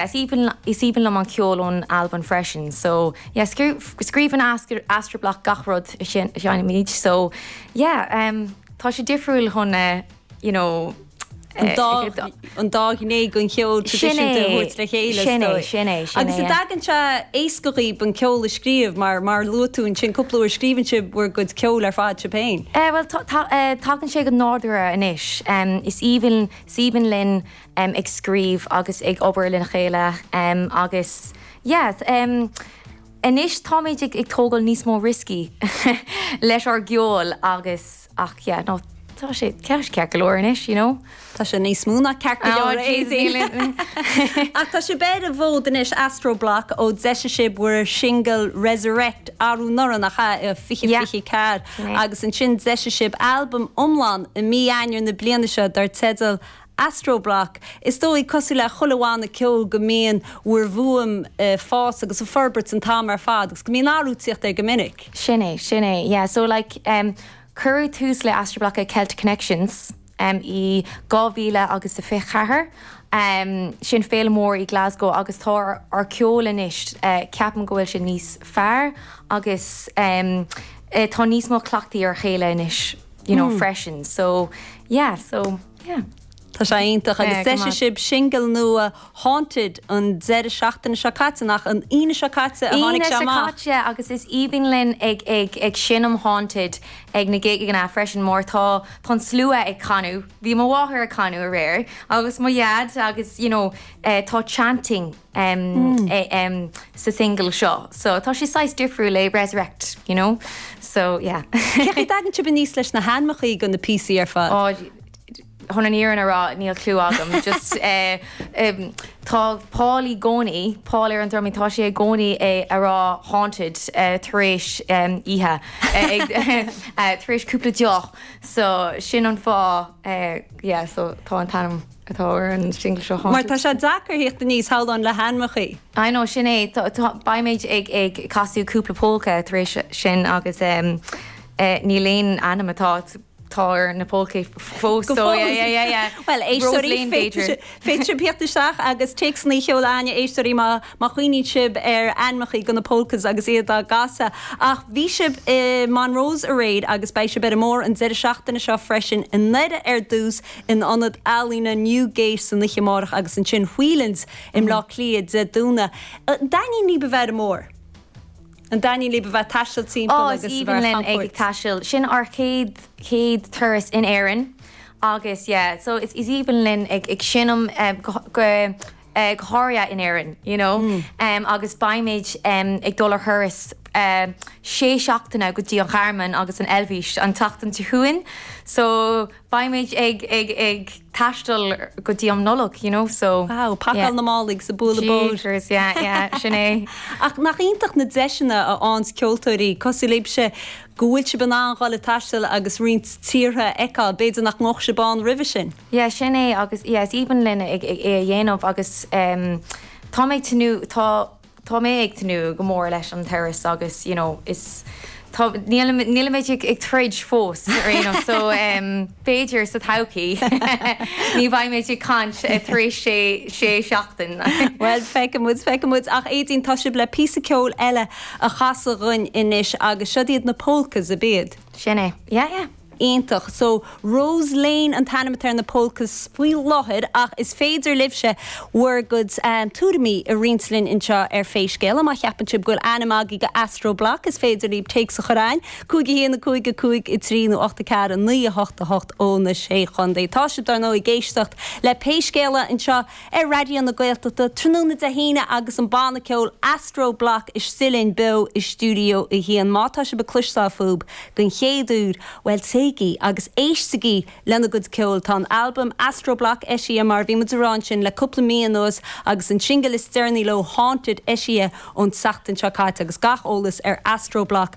Is aoibhinn liom an ceol ón Albain freisin so yeah scríobhann Astro Bloc gach rud a sheinnimid so yeah tá sé difriúil chun you know an dá ghné den cheol traidisiúnta a thabhairt le chéile. Sin é, sin é. Agus an dtagann sé éasca dhaoib an ceol a scríobh mar mar luaigh tú ansin cúpla uair scríobhann sibh bhur gcuid ceoil ar fad sibh féin. Bhuel tagann sé go nádúrtha anois. Is aoibhinn linn ag scríobh agus ag obair lena chéile agus yeah anois táimid ag tógáil níos mó rioscaí leis ár gceol agus ach yeah no tá sé ceart go leor anois you know. Tá sé níos mó ná ceart go leor a Éadaoin. Ach tá sibh ar an bhfód anois Astro Bloc ó d'eisigh sibh bhur singil Resurrect arú anuraidh nach ea, i 2024 agus ansin d'eisigh sibh albam iomlán i mí Eanáir na bliana seo dar teideal Astro Bloc, Is dóigh, cosúil le chuile bhanna ceoil, go mbíonn bhur bhfuaim a' fás agus a' forbairt an t-am ar fad agus go mbíonn athrú a' tíocht air go minic. Sin é, sin é. Yeah, so like em cuireadh tús le Astro Bloc ag Celtic Connections em i dhá mhíle agus a fiche ceathair. Em sin féile mór i Glasgow agus tá ár, ár ceol anois eh ceapaim go bhfuil sé níos fearr agus em eh tá níos mó cleachtaidh ar a chéile anois you know freisin so yeah, so. Tá sé iontach agus d'eisigh sibh singil nua 'Haunted' an deireadh seachtaine seo caite, nach an Aoine seo caite a tháinig sé amach? Aoine seo caite agus is aoibhinn linn ag seinm 'Haunted' ag na gigeanna freisin mar tá an slua ag canadh, bhí mo mháthair ag canadh aréir agus mo dhaid agus you know tá chanting, em, sa single seo so tá sé saghas difriúil le Resurrect, you know, so yeah. Cén chaoi a dtagann sibh aníos leis na hainmeachaí do na píosaí ar fad? Oh, chun an fhírinne a rá níl cliú agam, just eh, em, tá Paul i gcónaí, Paul ar an drumaí, tá sé i gcónaí ag rá haunted eh, tar éis em, oíche, eh, ag, eh, tar éis cúpla deoch so sin an fáth eh, yeah, so tá an t-ainm. atá ar an singil seo Mar tá sé deacair thíocht aníos shamhlóinn le hainmeachaí. I know, sin é, beimid ag casadh cúpla polka tar éis sin agus níl aon ainm atá atá ar na polkas fós. So yeah, yeah, yeah, yeah. Bhuel, éisteoirí, féadfaidh sibh thíocht isteach agus téacs a sheoladh againn, a éisteoirí má chuimhníonn sibh ar ainmeachaí do na polkas agus iad á gcasadh. Ach bhí sibh i Monroe's aréir agus beidh sibh ar an mbóthar an deireadh seachtaine seo freisin i nDoire ar dtús. in ionad ealaíona Newgate san oíche amárach agus ansin Whelan's i mBleá Cliath Dé Domhnaigh. An dtaitníonn lib a bheith ar an mbóthar, an dtaitníonn lib a bheith ag taisteal timpeall agus a bheith ar chamchuairt. Ó, is aoibhinn linn é ag taisteal. Sin ár chéad, chéad turas in Éirinn agus yeah, so is aoibhinn linn ag ag seinm go, go, go háirithe in Éirinn, you know. Agus beimid ag dul ar thuras sé seachtaine go dtí an Ghearmáin agus an Eilbhís an tseachtain seo chugainn. So beimid ag taisteal go dtí am Nollag, you know, so. Wow, pacáil na málaí agus ag bualadh bóthair. Jeepers, yeah, yeah, sin é. Ach nach iontach na deiseanna a fhaigheanns ceoltóirí cosúil libhse. go bhfuil sibh in ann dul ag taisteal agus roinnt tíortha a fheiceáil, b'fhéidir nach ndeachaigh sibh ann roimhe sin. Yeah, sin é agus yeah is aoibhinn linn é a dhéanamh agus em tá mé ag tnúth, tá, tá mé ag tnúth go mór leis an turas agus you know is tá, nílimid, nílimid ag troid fós ar aon nós so em. B'fhéidir sa todhchaí. Ní bheimid ag caint tar éis sé seachtain. Bhuel, feicfimid, feicfimid. Ach Aedín, tá sibh le píosa ceoil eile a chasadh dhuinn anois agus siod iad na Polkas, ab ea? Sin é. Yeah, yeah. Iontach. So, Rose Lane an t-ainm atá ar na Polkas faoi láthair ach is féidir libhse bhur gcuid tuairimí a roinnt linn anseo ar Pé Scéal. Má cheapann sibh go bhfuil ainm agaibh do Astro Bloc is féidir libh téacs a chur chugainn 5, 1, 5, 5, 3 nó 8, 4, 9, 8, 8 ó na Sé Chontae. Tá sibh, dár ndóigh, ag éisteacht le Pé Scéal anseo ar Raidió na Gaeltachta tráthnóna Dé hAoine agus an banna ceoil Astro Bloc istigh linn beo i Stiúideo 1. Má tá sibh ag cloisteáil fúthu den chéad uair, bhuel, téigí agus éistigí lena gcuid ceoil. Tá an albam Astro Bloc eisithe, mar a bhí muid ag rá ansin, le cúpla mí anuas agus an singil is deireanaí leo, Haunted, eisithe ón tseachtain seo caite agus gach eolas ar Astro Bloc,